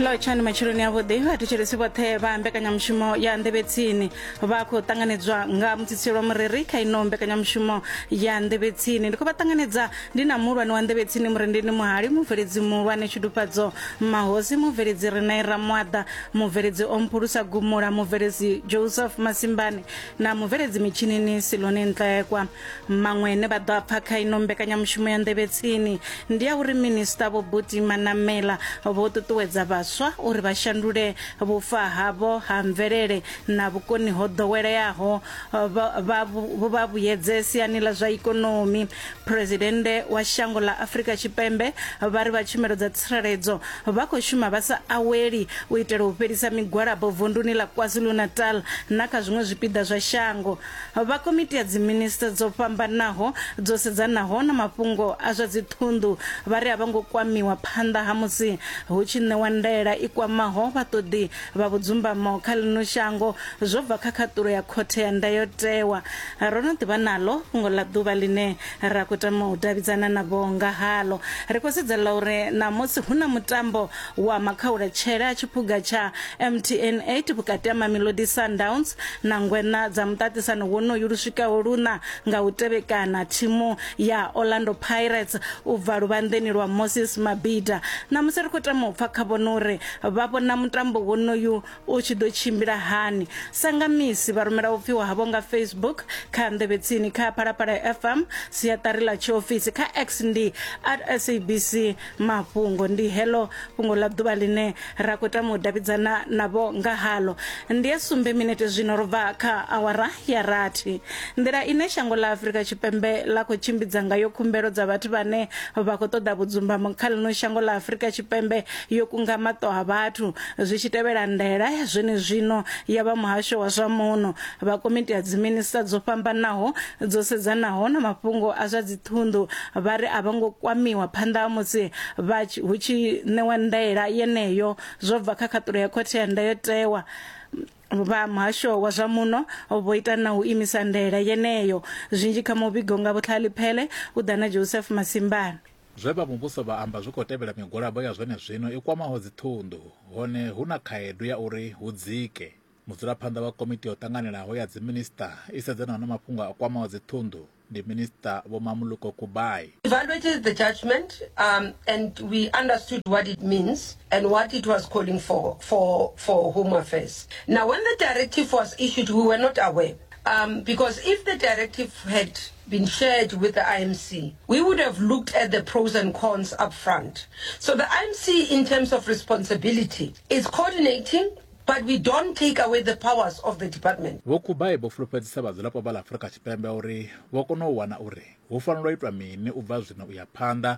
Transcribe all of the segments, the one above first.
lotshani matshiloni avhuḓi vhathetshelesi vhoṱhe vha mbekanyamushumo ya nḓevhetsini vha khou ṱanganedzwa nga mutsitsilo wa mureri kha ino mbekanyamushumo ya nḓevhetsini ndi khou vha ṱanganedza ndi na muhulwane wa nḓevhetsini murendeni muhali mubveledzi muhulwane tshidufhadzo mahosi mubveledzi renaira mwaḓa mubveledzi omphulusa gumula mubveledzi joseph masimbane na mubveledzi mitshinini siloni ntlekwa maṅwe ne vha ḓo a pfa kha ino mbekanyamushumo ya nḓevhe tsini ndi ya uri minista vho buti manamela vho ṱuṱuwedza vhaswa uri vha shandule vhufa havho ha mvelele na vhukoni ho ḓoweleaho vha vhuyedze siani ḽa zwa ikonomi phuresidennde wa shango ḽa afurika tshipembe vha ri vha tshumelo dza tsireledzo vha khou shuma vha sa aweli u itela u fhelisa migwalabo vunduni ḽa kwazulu-natal na kha zwiṅwe zwipiḓa zwa shango vha Komiti ya Dziminisiṱa dzo fhambanaho dzo sedzanaho na mafhungo a zwa dziṱhunḓu vha ri a vho ngo kwamiwa phanḓa ha musi hu tshi ṋewa ndaela i kwamaho vhaṱoḓi vha vhudzumbamo kha ḽino shango zwo bva kha khaṱulo ya Khothe ya Ndayotewa. Ro no ḓivha naḽo fhungo ḽa ḓuvha ḽine ra khou tama u davhidzana navho nga haḽo. Ri khou sedza ḽa uri ṋamusi hu na mutambo Wa makhaula tshele a tshiphuga tsha MTN 8 vhukati ha Mamelodi Sundowns na ngweṋa dza muṱaṱisano wonoyu lu swikaho luṋa nga u tevhekana, thimu ya Orlando Pirates u bva luvhanḓeni lwa Moses Mabhida. Ṋamusi ri khou tama u pfa kha vhone uri vha vhona mutambo wonoyu U tshi ḓo tshimbila hani? Sa nga misi, vha rumela u pfiwa havho nga Facebook, kha Nḓevhetsini, kha Phalaphala FM, siaṱari ḽa tshiofisi, kha X ndi at SABC Mafhungo. Ndi heḽo fhungo ḽa ḓuvha ḽine ra khou tama u davhidzana navho nga haḽo. Ndi ya sumbe minete zwino ro bva kha awara ya rathi. Nḓila ine shango ḽa Afrika Tshipembe ḽa khou tshimbidza ngayo khumbelo dza vhathu vhane vha khou ṱoḓa vhudzumbamo kha ḽino shango ḽa Afrika Tshipembe yo kunga maṱo a vhathu zwi tshi tevhela ndaela ya zwenezwino ya vha muhasho wa zwa muno. Vha komiti ya dziminisiṱa dzo fhambanaho dzo sedzanaho na mafhungo a zwa dziṱhunḓu vha ri a vho ngo kwamiwa phanḓa ha musi vha hu tshi ṋewa ndaela yeneyo zwo bva kha khaṱulo ya khothe ya ndayotewa. vha muhasho wa zwa muno vho ita na u imisa ndaela yeneyo zwinzhi kha muvhigo nga vhutlhaliphele u ḓa na joseph masimbana Zwe vha muvhuso vha amba zwi khou tevhela migwalabo ya zwenezwino i kwamaho dziṱhunḓu hone hu na khaedu ya uri hu dzike. Mudzulaphanḓa wa Komiti yo Ṱanganelaho ya Dziminisiṱa i sedzanaho na mafhungo a kwamaho dziṱhunḓu ndi Minisiṱa Vho Mamuluko Kubayi. Evaluated the judgement um, and we understood what it means and what it was calling for for for Home Affairs. Now when the directive was issued we were not aware um, because if the directive had been shared with the IMC, we would have looked at the pros and cons up front. So the IMC, in terms of responsibility, is coordinating but we don't take away the powers of the department vho kubai vho fulufhedzisa vhadzulapo vha ḽa afurika tshipembe uri vho kona u wana uri hu fanela u itwa mini u bva zwino u ya phanḓa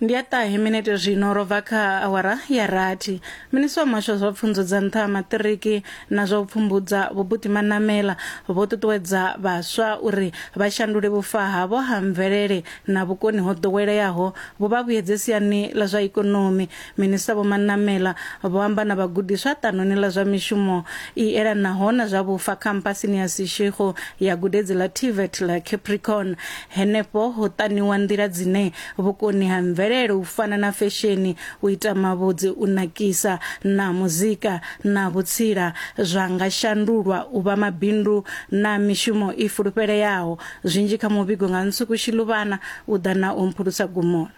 ndi ya ṱahe minete zwino ro bva kha awara ya rathi minisiṱa wa muhasho wa zwa pfunzo dza nṱha ha maṱiriki na zwa u pfumbudza vhubuti manamela vho ṱuṱuwedza vhaswa uri vha shandule vhufa havho ha mvelele na vhukoni ho ḓoweleaho vhu vha vhuyedze siani ḽa zwa ikonomi Minista Vho Manamela vho amba na vhagudiswa ṱanoni ḽa zwa mishumo i elanaho na zwa vhufa khampasini ya Seshego ya gudedzi ḽa TVET ḽa Capricorn. Henefho ho ṱaniwa nḓila dzine vhukoni ha mvelele u fana na fesheni, u ita mavhudzi, u nakisa na muzika na vhutsila zwa nga shandulwa u vha mabindu na mishumo i fulufheleaho. Zwinzhi kha muvhigo nga Nsuku Shiluvhana u ḓa na u mphulusa gumoni.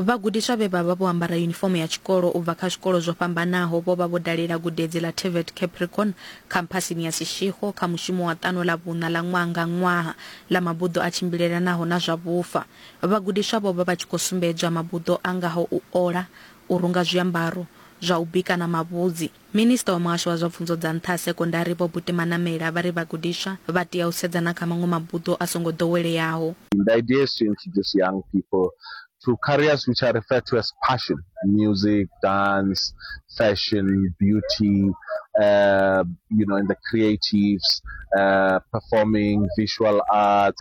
Vhagudiswa vhe vha vha vho ambara yunifomo ya tshikolo u bva kha zwikolo zwo fhambanaho vho vha vho dalela gudedzi ḽa TVET Capricorn khamphasini ya Seshego kha mushumo wa ṱano ḽa vhuṋa ḽa ṅwaha nga ṅwaha ḽa mabuḓo a tshimbilelanaho na zwa vhufa. Vhagudiswa vho vha vha tshi khou sumbedzwa mabuḓo a ngaho u ola, u runga zwiambaro, zwa u bika na mavhudzi. Minisiṱa wa Muhasho wa zwa Pfunzo dza Nṱha ha Sekondari Vho Buti Manamela vha ri vhagudiswa vha tea u sedza na kha maṅwe mabuḓo a songo ḓoweleaho. The idea is to introduce young people to careers which are referred to as passion, music, dance, fashion, beauty, uh, you know, in the creatives, uh, performing, visual arts.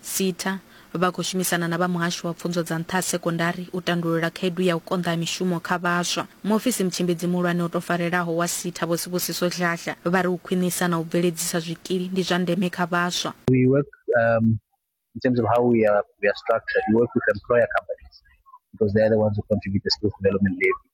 SETA, vha khou shumisana na vha Muhasho wa Pfunzo dza Nṱha ha Sekondari u tandulula khaedu ya u konḓa ha mishumo kha vhaswa. Muofisi Mutshimbidzii Muhulwane o tou farelaho wa SETA Vho Sibusiso Dladla vha ri u khwinisa na u bveledzisa zwikili ndi zwa ndeme kha vhaswa. We work um, in terms of how we are, we are structured, we work with employer companies because they are the ones who contribute the skills development levy.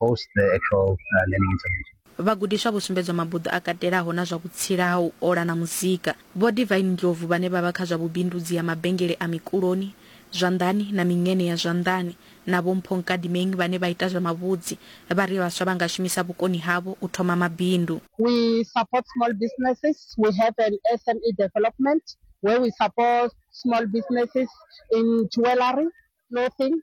post the actual uh, learning intervention. Vhagudiswa vho sumbedzwa mabuḓo a katelaho na zwa vhutsila ha u ola na muzika. Vho Divine Ndlovu vhane vha vha kha zwa vhubindudzi ha mabengele a mikuloni, zwanḓani na miṅene ya zwanḓani na Vho Mpho Nkadimeng vhane vha ita zwa mavhudzi vha ri vhaswa vha nga shumisa vhukoni havho u thoma mabindu. We support small businesses. We have an SME development where we support small businesses in jewellery, clothing,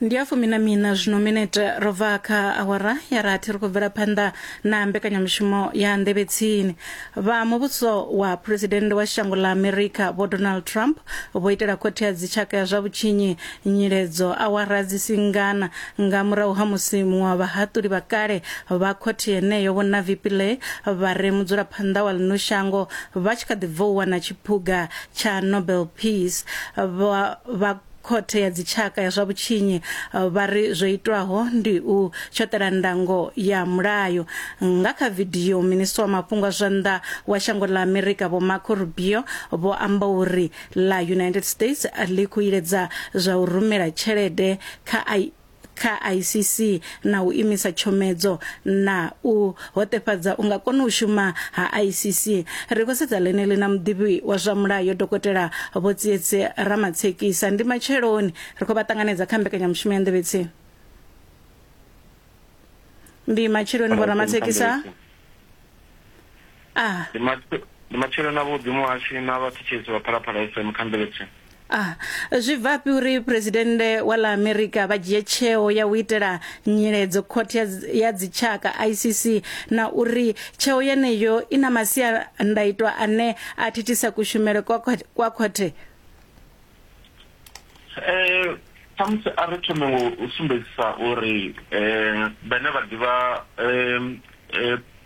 ndi a fumi na miṋa zwino minete ro bva kha awara ya rathi ri khou bvela phanḓa na mbekanyamushumo ya nḓevhe tsini vha muvhuso wa phuresidennde wa shango ḽa amerika vho donald trump vho itela khothe ya dzitshaka ya zwa vhutshinyi nyiledzo awara dzi singana nga murahu ha musi muṅwe wa vhahaṱuli vha kale vha khothe yeneyo vho navi pillay vha re mudzulaphanḓa wa ḽino shango vha tshi kha ḓi bva u wana tshiphuga tsha nobel peace vha khothe ya dzitshaka ya zwa vhutshinyi vha ri zwo itwaho ndi u tshoṱela ndango ya mulayo nga kha vidio minisiṱa wa mafhungo a zwa nnḓa wa shango ḽa amerika vho marco rubio vho amba uri ḽa united states ḽi khou iledza zwa u rumela tshelede kha kha ICC na u imisa tshomedzo na u hoṱefhadza unga kona u shuma ha ICC ri khou sedza ḽeneḽi na muḓivhi wa zwa mulayo dokotela Vho Tsietse Ramatshekisa ndi matsheloni ri khou vha ṱanganedza kha mbekanyamushumo ya nḓevhetsi ndi matsheloni Vho Ramatshekisa a Ndi matshi- ndi matshilo na vhuḓi muhashi na vhathetshelesi vha phalaphala fm kha mveledziso a zwi bvafhi uri phuresidennde wa ḽa amerika vha dzhie tsheo ya u itela nyiledzo khothe ya dzi- ya dzitshaka icc na uri tsheo yeneyo i na masiandaitwa ane a thithisa kushumele kwa khothe- kwa khothe um khamusi a ri thome ngo u sumbedzisa uri um vhane vha ḓivha um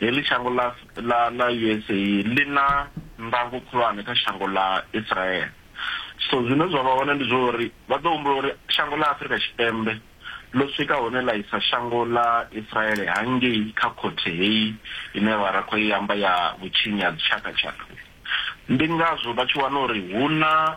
Heḽi shango ḽa ḽa ḽa usa ḽi na ndango khulwane kha shango ḽa Israel. So zwine zwa vha hone ndi zwa uri vha ḓo humbula uri shango ḽa Afrika Tshipembe ḽo swika hune ḽa isa shango ḽa Israel hangei kha khothe heyi ine vha ra khou i amba ya vhutshinyi ha dzitshakatshaka. Ndi ngazwo vha tshi wana uri hu na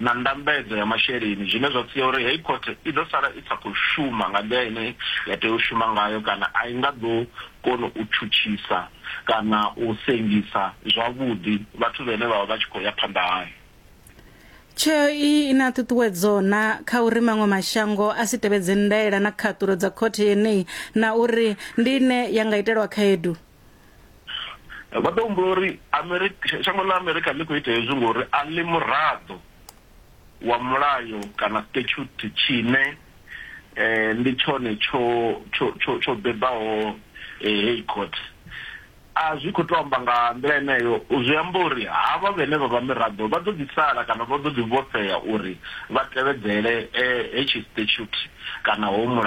na ndambedzo ya masheleni zwine zwa sia uri heyi khothe i ḓo sala i sa khou shuma nga nḓila ine ya tea u shuma ngayo kana a i nga ḓo kona u tshutshisa kana u sengisa zwavhuḓi vhathu vhene vha vha vha tshi khou ya phanḓa hayo. Tsheo iyi i na ṱhuṱhuwedzo na kha uri maṅwe mashango a si tevhedze ndaela na khaṱulo dza khothe yeneyi na uri ndi ine ya nga itelwa khaedu. vha ḓo humbula uri Amerika, shango ḽa Amerika ḽi khou ita hezwi ngori a ḽi muraḓo wa mulayo kana statute tshine eh, ndi tshone tsho tsho tsho tsho bebaho eh, heyi court a zwi khou to amba nga nḓila eneyo zwi amba uri havha vhene vha vha miraḓo vha ḓo ḓi sala kana vha ḓo ḓi vhofhea uri vha tevhedzele eh, hetshi statute kana ho mulayo